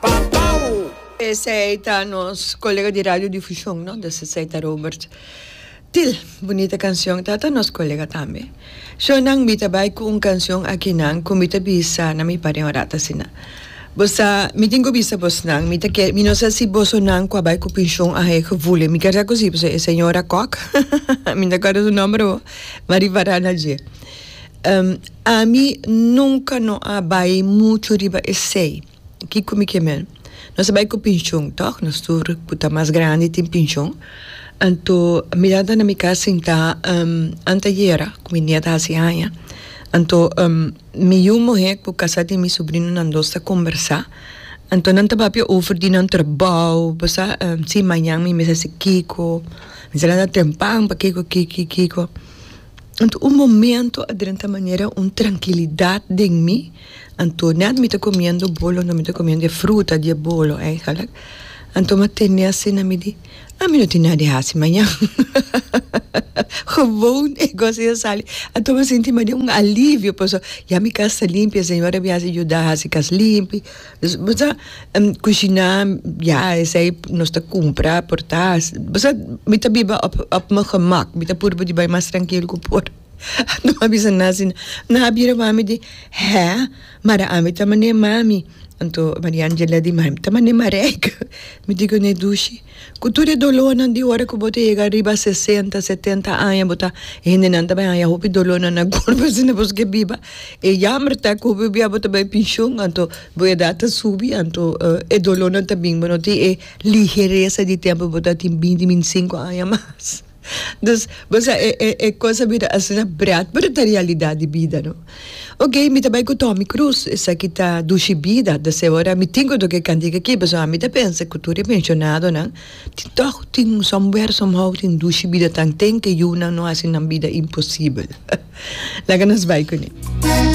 Pau! Esei ta nos colega di radio difusion no dus esei ta Robert Til bunita cancion ta ta nos colega tambe so nan mi ta bay cu un cancion akinan cu mi ta bisa na mi paren orat asina bo sa mi tin cu bisa bos nan mi ta kere mi no sa si boso nan cu a bay cu pincion a heg vule mi keda cu si pasobra e señora Kok mi no ta acuerda su nomber awor Marie Varana dje. Ami nunka no a bai muchu riba esei. Kiko mi ke mel? Nos a bai ku pinshon, tòg? Nos tur ku ta mas grandi tin pinshon. Anto mi tata na mi kas sintá anteayera ku mi nièt a hasi aña. Anto mi yu muhé ku kasá tin mi subrinonan dos ta kombersá. Anto nan ta papia over di nan trabou, bo sa, si mañan mi mester hasi kiko, mi ser a nota tempan pa kiko, kiko, kiko. Anto un momento a drenta manera un trankilidat den mi, anto net mi ta komiendo bolo, anto mi ta komiendo e fruta di e bolo eigenlik, anto m'a tende a si na mi di, a mi no tin nada di hasi mañan, gewoon e gosi a sali, anto m'a sinti manera un alivio, pasobra ya mi kas ta limpi, e señora a bin hasi yuda hasi kas limpi. Bo sa kushiná ya esei nos ta kumpra por ta hasi bo sa mi ta biba op op mi gemak mi ta puru pa di bai mas trankil ku por no a bisa na asina nan a bira wami di hé mara ami ta mane mami anto Maria Angela di mami ta mane mareike mi di kuné dushi Ku tur e dolónan di ora ku bo ta yega riba sesenta, setenta aña bo ta hendenan ta bai haña hopi dolónan na korpu asina bo ke biba e yamber ta ku hopi bia bo ta bai penshon anto bo edat ta subi anto e dolónan ta bin bo no tin e ligeresa di tempu bo ta tin binti binti sinku aña mas. Dus, bo sa e e e cosa bira asina brat, pero ta realidad di bida no. Ok, mi ta bai cu toha mi cruz, esaki ta dushi bida, ta ser ora mi tin cu toca e cantica aki, pasobra ami ta pensa cu tur e pensionadonan tin tog tin un somewhere, somehow tin dushi bida tanten cu e yunan no haci nan bida imposible. Laga nos bai cun'e.